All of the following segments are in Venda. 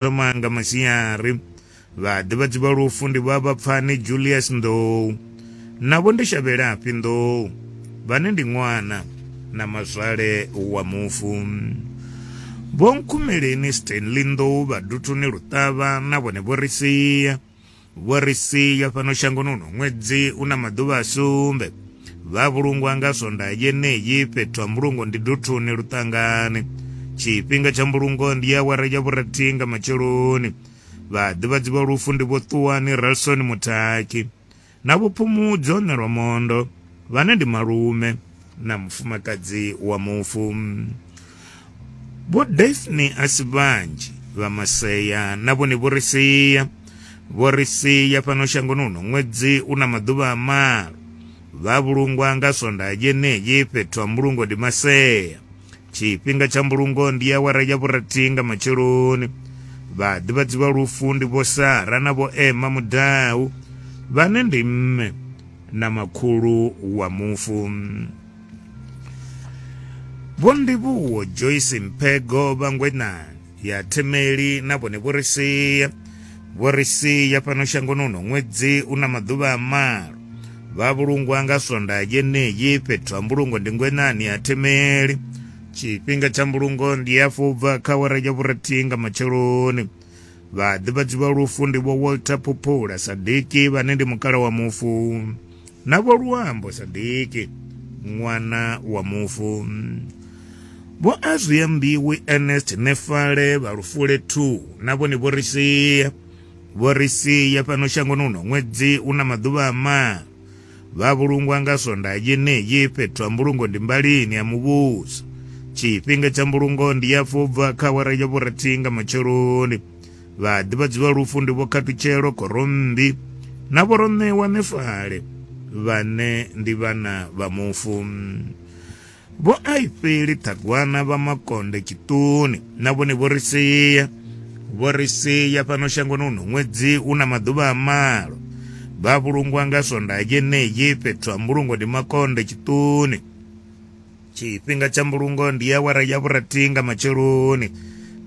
Vho Manga Masiari, vhaḓivhadzi vha lufu ndi vha Vhapfani Julius Nḓou na Vho Ndishavhelafhi Nḓou vhane ndi ṅwana na mazwale wa mufu. Vho Nkhumeleni Stanley Nḓou vha Duthuni Luṱavha na vhone vho ri sia. Vho ri sia fhano shangoni uno ṅwedzi u na maḓuvha a sumbe vha vhulungwa nga swondaha yeneyi fhethu ha mbulungo ndi duthuni luṱangani tshifhinga tsha mbulungo ndi ya awara ya vhurathi nga matsheloni vhaḓivhadzi vha lufu ndi vho ṱuwani ralson muthaki na vho phumudzo nelwa mondo vhane ndi malume na mufumakadzi wa mufu. Vho Daphne a si vhanzhi vha masea na vhone vho ri sia vho ri sia fhano shangoni uno ṅwedzi u na maḓuvha a malo vha vhulungwa nga swonda yeneyi fhethu ha mbulungo ndi masea tshifhinga tsha mbulungo ndi awara ya vhurathi nga matsheloni vha ḓivhadziwa lufu ndi vho sara na vho ema mudau vhane ndi mme na makhulu wa mufu. Vho Ndivhuwo Joyce Mphego vha Ngwenani ya Themeli na vhone vho ri sia vho ri sia fhano shangoni uno ṅwedzi u na maḓuvha a malo vha vhulungwa nga swonda yeneyi fhethu ha mbulungo ndi Ngwenani ya Themeli tshifhinga tsha mbulungo ndi ya fubva kha awara ya vhurathihi nga matsheloni vhaḓivhadzi vha lufu ndi vho walter phuphula sadiki vhane ndi mukala wa mufu na vho luambo sadiki ṅwana wa mufu vho azwiya mbiwi ernest nefale vha lufule 2 na vhone vho ri sia vho ri sia fhano shangoni uno ṅwedzi una maḓuvha a maa Vha vhulungwa nga swondaha yeneyi fhethu ha mbulungo ndi mbalini ya muvhuso. Tshifhinga tsha mbulungo ndi ya fo bva kha awara ya vhurathi nga matsheloni. Vhaḓivhadzi vha lufu ndi Vho Khathutshelo Khorommbi na Vho Roṋewa Nefale vhane ndi vhana vha mufu. Vho Aifeli Ṱhagwana vha Makonde Tshiṱuni na vhone vho ri sia vho ri sia fhano shangoni uno ṅwedzi u na maḓuvha a malo vha vhulungwa nga swondaha yeneyi fhethu ha mbulungo ndi Makonde Tshiṱuni tshifhinga tsha mbulungo ndi ya wara ya vhurathi nga matsheloni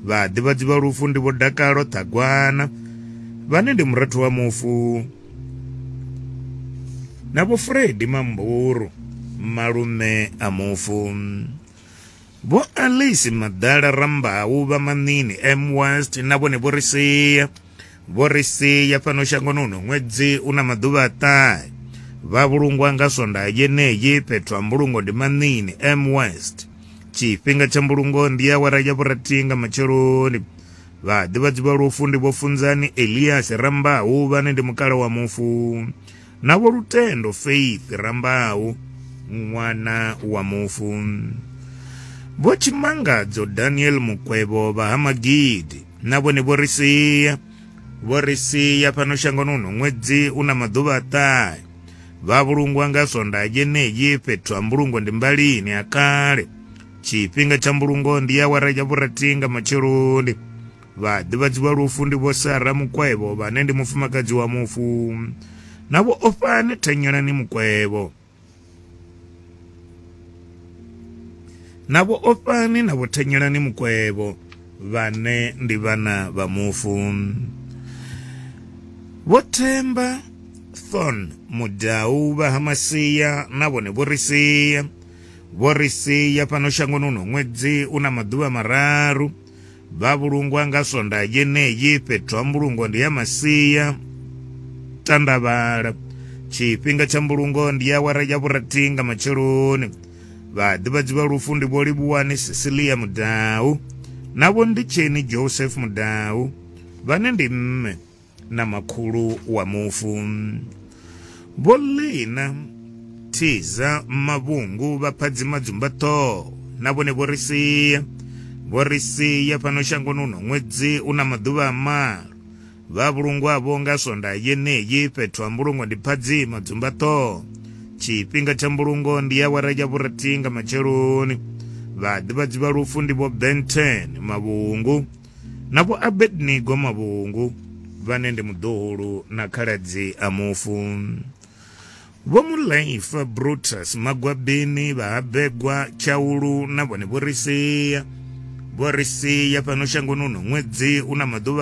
vhaḓivhadzi vha lufu ndi vho Dakalo Ṱhagwana vhane ndi murathu wa mufu na vho fredi mamburu malume a mufu vho alice madala rambau vha manini m west na vhone vho ri sia vho ri sia fhano shangoni uno ṅwedzi u na maḓuvha a ṱahe vha vhulungwa nga swonda yeneyi fhethu ha mbulungo ndi manini m west tshifhinga tsha mbulungo ndi awara ya vhurathi nga matsheloni Vhaḓivhadzi vha lufu ndi Vho Funzani Elias Rambau vhane ndi mukala wa mufu na Vho Lutendo Faith Rambau ṅwana wa mufu. Vho Tshimangadzo Daniel Mukwevho vha ha Magidi na vhone vho ri sia vho ri sia fhano shangoni uno ṅwedzi u na maḓuvha a ṱahe vha vhulungwa nga sonda yeneyi fhethu ha mbulungo ndi mbalini ha kale tshifhinga tsha mbulungo ndi awara ya vhurathi nga matsheloni vhaḓivhadzi vha lufu ndi vho sara mukwevho vhane ndi mufumakadzi wa mufu na vho ofhane thanyelani mukwevho na vho ofhane na vho thanyelani mukwevho vhane ndi vhana vha mufu vho themba thon mudau vha ha masia na vhone vho ri sia Vho ri sia fhano shangoni uno ṅwedzi u na maḓuvha mararu. Vha vhulungwa nga swondaha yeneyi fhethu ha mbulungo ndi ya masia tandavhala. Tshifhinga tsha mbulungo ndi ya awara ya vhurathi nga matsheloni. Vhaḓivhadzi vha lufu ndi vho Livhuwani Cecilia Mudau na vho Nditsheni Joseph Mudau vhane ndi mme na makhulu wa mufu. Vho Lina Thiza Mavhungu vha phadzima dzumbaṱhoho na vhone vho ri sia vho ri sia fhano shangoni uno ṅwedzi u na maḓuvha a malo vha vhulungwavho nga swonda yeneyi fhethu ha mbulungo ndi phadzima dzumbaṱhoho tshifhinga tsha mbulungo ndi awara ya vhurathi nga matsheloni vhaḓivhadzi vha lufu ndi vho benten mavhungu Na vho Abednego mavhungu vhane ndi muḓohulu na khaladzi a mufu. Vho Mulaifa Brutus Magwabini vha Habegwa Tshaulu na vhone vho ri sia. Vho ri sia fhano shangoni uno ṅwedzi una maḓuvha